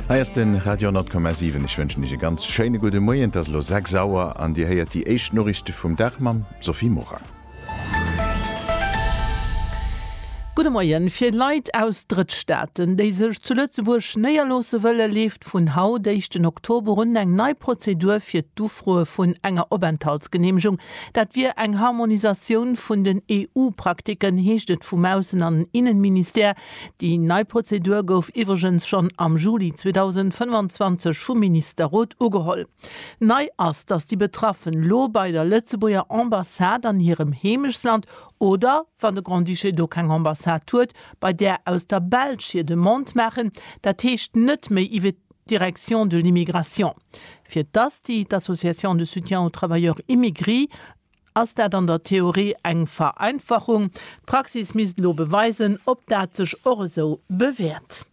Hei ass den Radio 10,7. Ech wënschen Iech e ganz schéine gudde Moien. Et ass elo 6 Auer an Dir héiert déi éischt Noriichte vum Dag mam Sophie Morang. Gudde Moien. Fir Leit aus Drëttstaaten, déi sech zu Lëtzebuerg néierloosse wëllen, leeft vun haut, éischten Oktober un eng nei Prozedur fir d'Ufroe vun enger Openthaltsgeneemegung. Dat wier eng Harmonisatioun vun den EU-Praktiken, heescht et vum Aussen an Innenministère. Déi nei Prozedur gouf iwwregens schonn am Juli 2025 vum Ministerrot ugeholl. Nei ass, datt déi Betraffen elo bei der Lëtzebuerger Ambassade an hirem Heemechtsland oder, wann de Grand-Duché do keng Ambassade huet, bei där aus der Belsch hir Demande maachen, dat heescht net méi iwwe d'Direction de l'immigration, fir datt déi d'Association de soutien aux travailleurs immigrés, ass dat an der Theorie eng Vereinfachung. D'Praxis misst elo beweisen, ob dat sech och esou bewäert.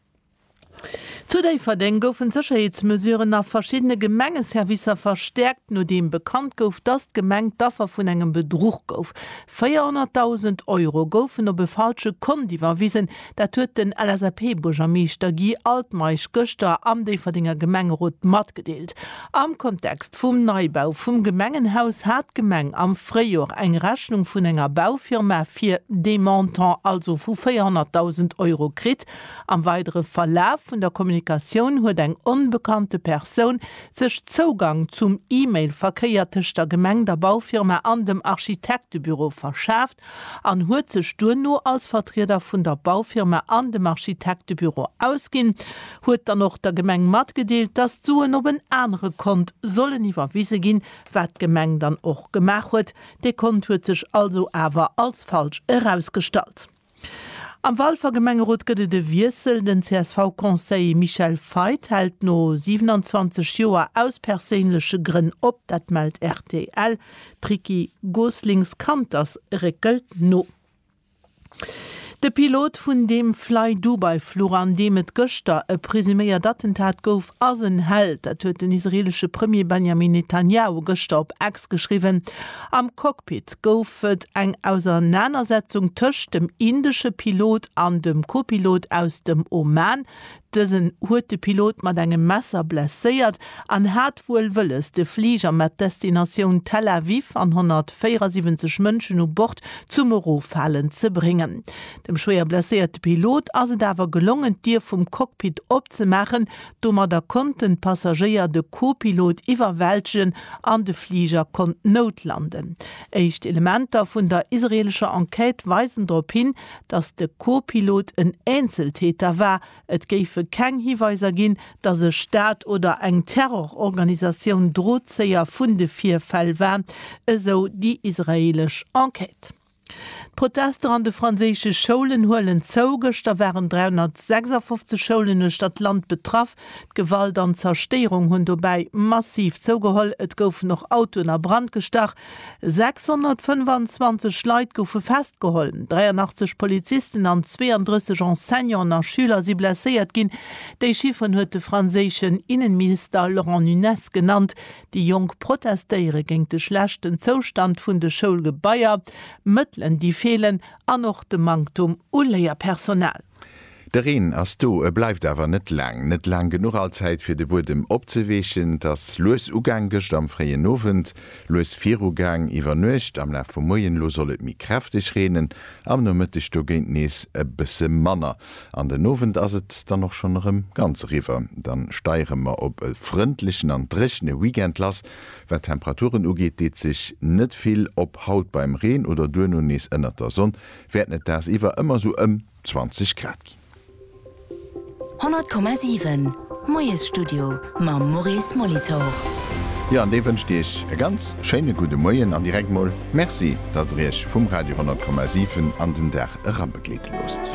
Zu Déifferdeng goufen d'Sécherheetsmesuren a verschiddene Gemengeservicer verstäerkt, nodeem bekannt gouf, dass d'Gemeng d'Affer vun engem Bedruch gouf. 400.000 Euro goufen op e falsche Kont iwwerwisen. Dat huet den LSAP-Buergermeeschter Guy Altmeisch gëschter am Déifferdenger Gemengerot matgedeelt. Am Kontext vum Neibau vum Gemengenhaus hat d'Gemeng am Fréijor eng Rechnung vun enger Baufirma fir dee Montant, also vu 400.000 Euro kritt. Am weidere Verlaf vun der Kommunikatioun huet eng onbekannte Persoun sech Zougang zum E-Mail-Verkéier tëscht der Gemeng, der Baufirma an dem Architektebüro verschaf. an huet sech duerno als Vertrieder vun der Baufirma an dem Architektebüro ausginn, huet dann och der Gemeng matgedeelt, dass d'Suen op en anere Kont sollen iwwerwise ginn, wat d'Gemeng dann och gemaach huet. Dee Kont huet sech also awer als falsch erausgestallt. Am Walfer Gemengerot gëtt et e Wiessel, Den CSV-Conseiller Michel Feith hält no 27 Joer aus perséinleche Grënn op, dat mellt rtl. D'Ricky Goslings Kanters réckelt no. De Pilot vun deem Flydubai-Fluch, an deem et gëschter e presuméiert Attentat gouf, ass en Held. Dat huet den israeelesche Premier Benjamin Netanjahu gëschter op X geschriwwen. Am Cockpit gouf et eng Ausernanersetzung tëscht dem indesche Pilot an dem Kopilot aus dem Oman. Dësen huet de Pilot mat engem Messer blesséiert an hat wuel wëlles, de Fliger mat Destinatioun Tel Aviv an 174 Mënschen u Bord zum Eroffalen ze bréngen. Dem schwéier blesséierte Pilot ass et awer gelongen, d'Dier vum Cockpit opzemaachen. Domadder konnten d'Passagéier de Co-Pilot iwwerwältegen an de Fliger konnt noutlanden. Éischt Elementer vun der israeelescher Enquête weisen drop hin, datt de Co-Pilot en Eenzeltäter war, et géife keng Hiweiser ginn, datt e Staat oder eng Terrororganisatioun Drozéier vun de Virfäll war, esou déi israeelesch Enquête. D'Protester an de franséische Schoulen huelen zou, gëschter waren 356 Schoulen uechter d'Land betraff. D'Gewalt an d'Zerstéierung hunn dobäi massiv zougeholl, et goufen och Autoen a Brand gestach, 625 Leit goufe festgeholl, 83 Polizisten an 32 Enseignanten a Schüler si blesséiert ginn. Déi Chifferen huet de franséischen Innenminister Laurent Nunez genannt. Déi Jonk protestéiere géint de schlechten Zoustand vun de Schoulgebaier, Mëttelen déi feelen an och de Manktum u Léierpersonal. De Reen ass do, e bleift awer net laang. Net laang genuch all Zäit fir de Buedem opzeweechen. Et ass lues ugaang, gëscht am fréien Owend lues virugaang, iwwer Nuecht, am Laf vum Moien elo soll et méi kräfteg reenen, am Nomëtteg dogéint nees e bësse manner. An den Owend ass et dann och schonn erëm ganz eriwwer. Dann steiere mer op e frëndlechen an dréchene Weekend lass. Wat d'Temperaturen ugeet, deet sech net vill, ob haut beim Reen oder duerno nees ënnert der Sonn. wäerten et dagsiwwer ëmmer sou ëm 20 Grad ginn. 100,7 Moiesstudio mam Maurice Molitor. Jo, an dee wënscht Iech e ganz schéine gudde Moien an direkt mol Merci, datt Der Iech vum Radio 100,7 an den Dag erabegleede loosst.